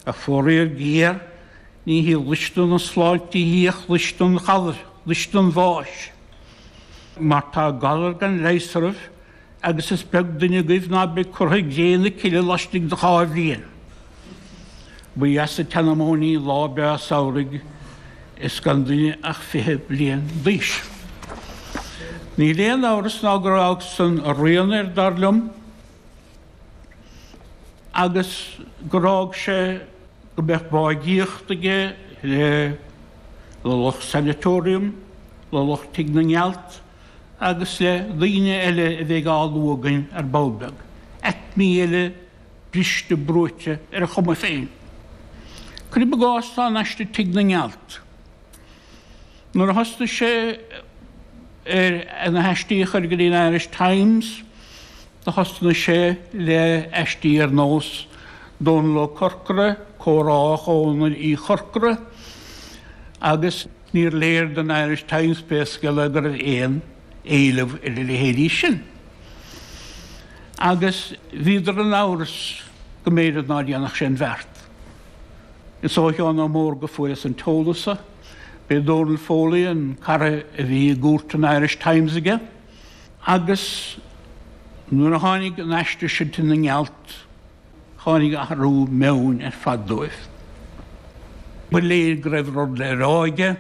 Ach foraíor géar, ní hí luisne na sláinte í ach luisne an ghalair, luisne an bháis. Mar tá galar gan leigheas oraibh, agus is beag duine agaibh ná beidh curtha i gcré na cille laistigh de dhá bhliain. Ba dheas an tseanmóin í lá breá samhraidh is gan duine ach fiche bliain d'aois. Níl aon amhras ná gur fhág san a rian air, dar liom. agus gur fhág sé go mbeadh báidhíocht aige le le lucht sanatorium, le lucht tigh na ngealt agus le daoine eile a bheidh á lua againn ar ball beag, aicmí eile briste brúite ar a chuma féin. Cuir i gcás tá an aiste Tigh na nGealt. Nuair a thosnaigh sé ar na haistí a chur go dtí an Irish Times, Thosnaigh sé le aistí ar nós Dónall Ó Corcora, Comhrá Dhónaill Uí Chorcora agus níor léir don Irish Times, pé scéal é, go raibh aon éileamh ar a leithéidí sin. Agus bhíodar in amhras go mb'fhéidir ná déanfadh sé an bheart. Is ó Sheán Ó Mórdha a fuaireas an t-eolas so. B'é Dónall Foley an cara a bhí i gcúirt an Irish Times aige. Agus nuair a tháinig an aiste sin Tigh na nGealt, tháinig athrú meoin ar fad dóibh. Ba léir go raibh rud le rá aige,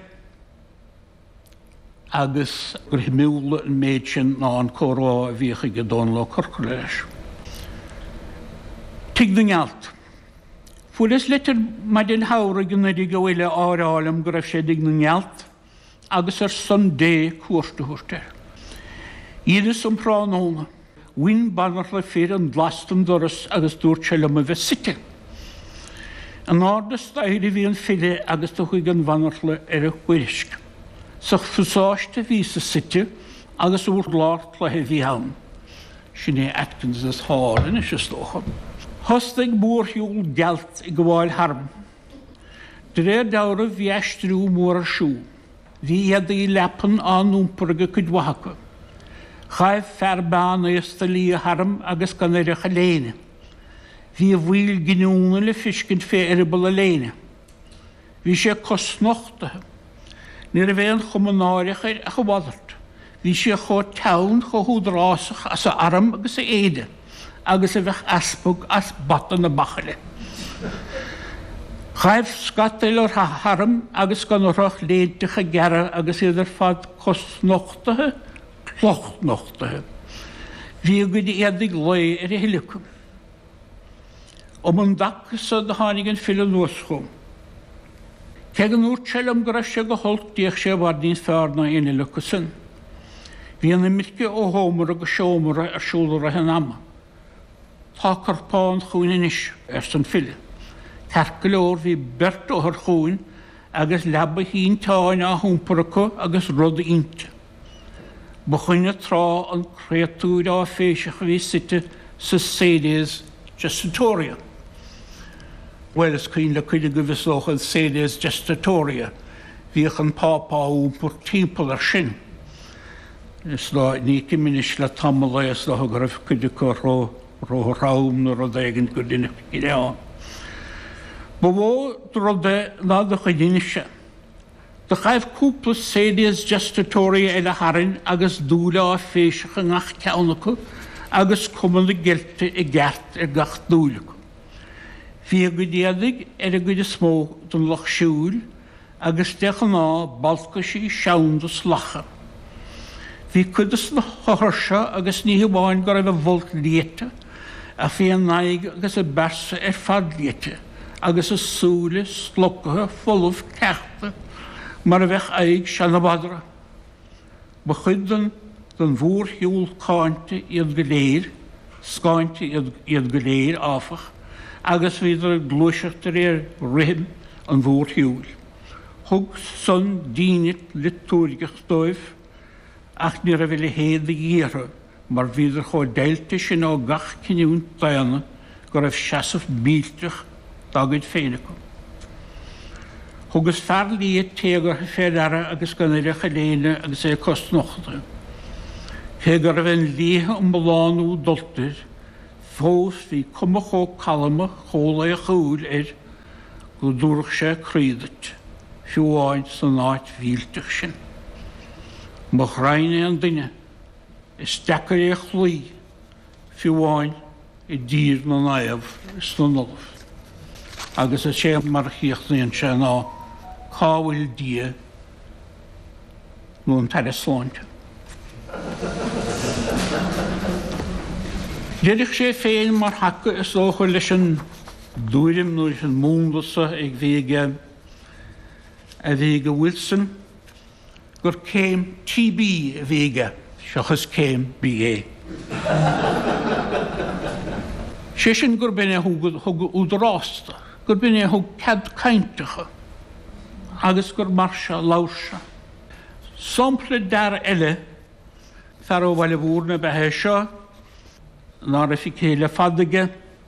agus gur shuimiúla an méid sin ná an comhrá a bhíodh aige Dónal Ó Corcora leis. Tigh na nGealt. Fuaireas litir maidin shamhraidh anuraidh ó fhile á rá liom go raibh sé i dTigh na nGealt. agus ar son Dé cuairt a thabhairt air. Dheineas um thráthnóna. Bhain banaltra fir an glas den doras agus dúirt sé liom a bheith suite. In airde staighre a bhí an file agus do chuaigh an bhanaltra ar a thuairisc. Sa phasáiste a bhíos-sa suite agus urlár cloiche a bhí ann. Sin é Atkins's Hall anois, is dócha. Thosnaigh mórshiúl gealt ag gabháil tharm. De réir dealraimh bhí aistriú mór ar siúl. Bhí éadaí leapan á n-iompar aige cuid mhaith acu. Ghaibh fear meánaosta liath tharm agus gan air ach a léine. Bhí a bhaill giniúna le feiscint fé eireaball a léine. Bhí sé cosnochtaithe. Ní raibh aon chuma náireach air ach a mhalairt. Bhí sé chomh teann, chomh húdarásach as a arm agus a éide. agus a bheadh easpag as bata na bachaille. Ghaibh scata eile tharam agus gan orthu ach léinteacha gearra agus iad ar fad cosnochtaithe, clochnochtaithe. Bhí a gcuid éadaigh lae ar a thuilleadh acu. Um an dtaca so do tháinig an file anuas chugam. Cé go ndúradh liom go raibh sé go holc d'fhéach sé i bhfad níos feárr ná éinne eile acu san. Bhí an imirce ó sheomra go seomra ar siúl i rith an ama. Tá corpán chugainn anois, arsa an file. Ceart go leor, bhí beirt othar chugainn agus leaba shínteáin á hiompar acu agus rud inti. Ba dhuine tráth an créatúir áiféiseach a bhí suite sa sedes gestatoria. Bhuel, is cuimhin le cuid agaibh, is dócha, an sedes gestatoria. Bhíodh an Pápa á iompar timpeall air sin. Is dóigh, ní fheicim anois le tamall é, is dócha go raibh cuid acu ró-throm nó rud éigin go deineadh cinneadh ann. Ba mhó de rud é ná de dhuine anois é. Do ghaibh cúpla sedes gestatoria eile tharainn agus dúil áiféiseach i ngach ceann acu agus cuma na geilte i gceart ar gach dúil acu. Bhí a gcuid éadaigh ar an gcuid is mó den lucht siúil agus de ghnáth balcaisí seanda salacha. Bhí cuid de sna hothair seo agus ní hamháin go raibh a bhfolt liata ach bhí a n-aghaidh agus a bpearsa ar fad liata agus a súile slocaithe folamh cleachta mar a bheadh aghaidh seana-mhadra. Ba chuid den den mhórshiúl cáinte iad go léir, scáinte iad go léir, áfach, agus bhíodar ag gluaiseacht de réir rithim an mhórshiúil. Thug san dínit liotúirgeach dóibh, ach ní raibh a leithéid de dhíth orthu mar bhíodar chomh deighilte sin ó gach cinniúint daonna go raibh seasamh millteach dá gcuid féin acu. Thugas fear liath téagartha fé ndeara agus gan air ach a léine agus é cosnochta. Cé go raibh an léithe iomlán úd dulta air, fós bhí cuma chomh calma chomh laochúil air go dtabharfadh sé croí duit, fiú amháin san áit mhillteach sin. Mo ghraidhin é an duine Is deacair é a chloí, fiú amháin i dTír na Naomh is na nOllamh, agus is é mar a chríochnaíonn sé ná Cá bhfuil Dia nó an tAire Sláinte? D'oirfeadh sé féin mar thaca is dócha leis an dtuairim nó leis an múnla seo a bhí ag a bhí ag Wilson, gur céim TB a bhí aige seachas céim BA. Sé sin gurb in é a thug údarásta, gurb in é a thug cead cainteacha agus gur mar seo a labhair sé. Sampla d'fhear eile, fear ó Bhaile Mhúirne ab ea é seo, ná raibh feicthe le fada aige.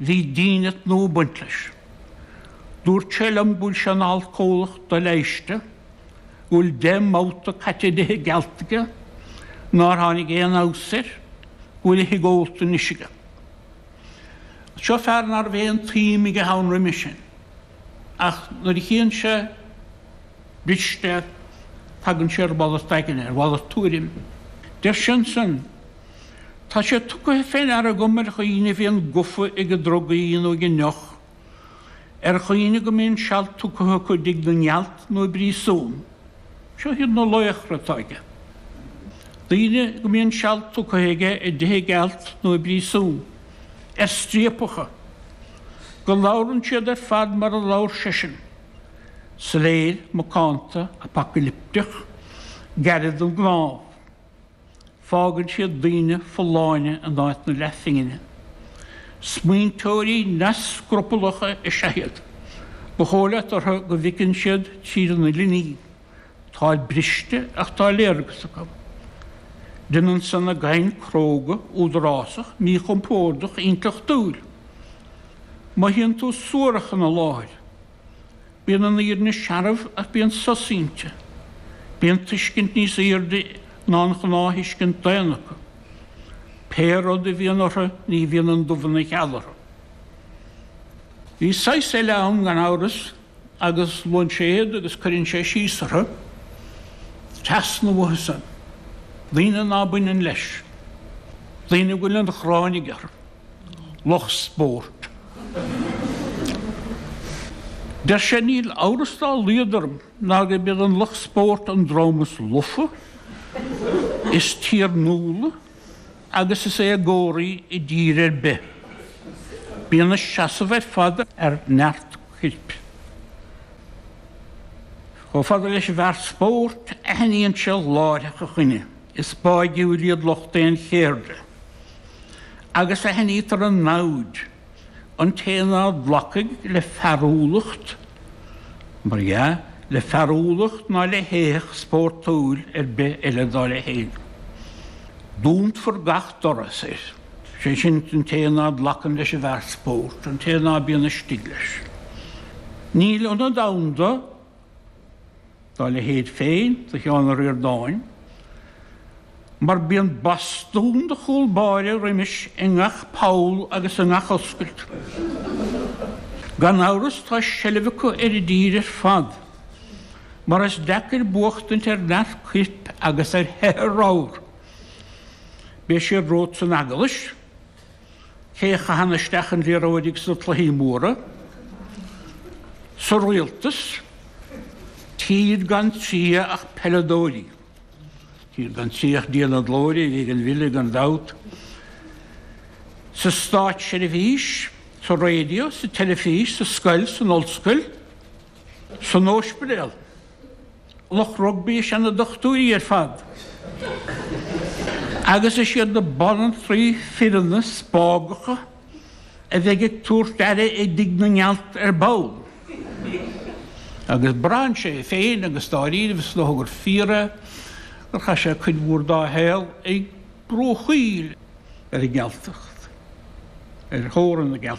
Bhí dínit nua ag baint leis. Dúirt sé liom go bhfuil sé ina alcólach doleigheiste, go bhfuil deich mbabhta caite i dtithe gealt aige, nár tháinig aon fheabhas air, go bhfuil a thigh ólta anois aige. Agus seo fear ná raibh aon tsuim aige ann roimhe sin, ach nuair a chíonn sé briste, tagann sé ar mhalairt aigne, ar mhalairt tuairime. Deir sé ansin. Tá sé tugtha fé ndeara agam ar dhaoine a bhíonn gofa ag drugaí nó ag an ndeoch, ar dhaoine go mbíonn seal tugtha acu i dtigh na ngealt nó i bpríosún, seo iad na laochra atá aige, daoine go mbíonn seal tugtha aige i dtithe gealt nó i bpríosún, ar striapacha, go labhrann siad ar fad mar a labhair seisean, soiléir, macánta, apacailipteach, gairid don gcnámh. Fágann siad daoine folláine in áit na leathphingine. Smaointeoirí neamhscrupallacha is ea iad. Ba dhóigh leat orthu go bhfeiceann siad tríd an uile ní. Táid briste ach tá léargas acu. Déanann san a gcaint cróga, údarásach, míchompordach, intleachtúil. Mothaíonn tú suarach ina láthair. Bíonn an fhírinne searbh ach bíonn sos inti. Bíonn tuiscint níos aoirde ná an ghnáth-thuiscint daonna acu. Pé rud a bhíonn orthu ní bhíonn an dubh ina gheal orthu. Bhí saghas eile ann gan amhras agus luann sé iad agus cuireann sé síos orthu, teas na bhfothasan, daoine ná baineann leis, daoine a bhfuil an ghráin aige orthu. lucht spóirt. Deir sé, Níl amhras dá laghad orm ná gurb iad an lucht spóirt an dream is lofa, is tiarnúla agus is éagóraí i dtír ar bith. Bíonn a seasamh ar fad ar neart coirp. Chomh fada leis an bhfear spóirt, aithníonn sé láithreach a choinne. Is báidhiúil iad lucht aon chéirde, agus aithnítear a namhaid, an té ná glacfaidh le fearúlacht, mar dhea, le fearúlacht ná le héitheach spórtúil ar bith eile dá leithéid. Dúnfar gach doras air, sé sin, an té ná glacann leis an bhfear spóirt, an té ná bíonn istigh leis. Níl ionad ann do. dá leithéid féin do Sheán Ó Ríordáin, mar bíonn bastún de chúl báire roimis i ngach poll agus i ngach oscailt. Gan amhras tá seilbh acu ar a dtír ar fad, mar is deacair buachtaint ar neart coirp agus ar sheithe ramhar. Beidh siad romhat san eaglais. cé a chaitheann isteach an liathróid sna cluichí móra sa rialtas, táid gan triath ach peileadóirí, táid gan triath ach Dia na glóire, ag an bhfile gan dabht, sa státseirbhís, sa raidió, sa teilifís, sa scoil, san ollscoil, san óispidéal. Lucht rugbaí is ea na dochtúirí ar fad agus is iad na banaltraí fireanna spágacha a bheidh ag tabhairt aire i dtigh na ngealt ar ball. Agus braitheann sé féin agus dáiríribh is dócha gur fíor é gur chaith sé cuid mhór dá shaol ag brúchtaíl ar an ngealtacht, ar theorainn na.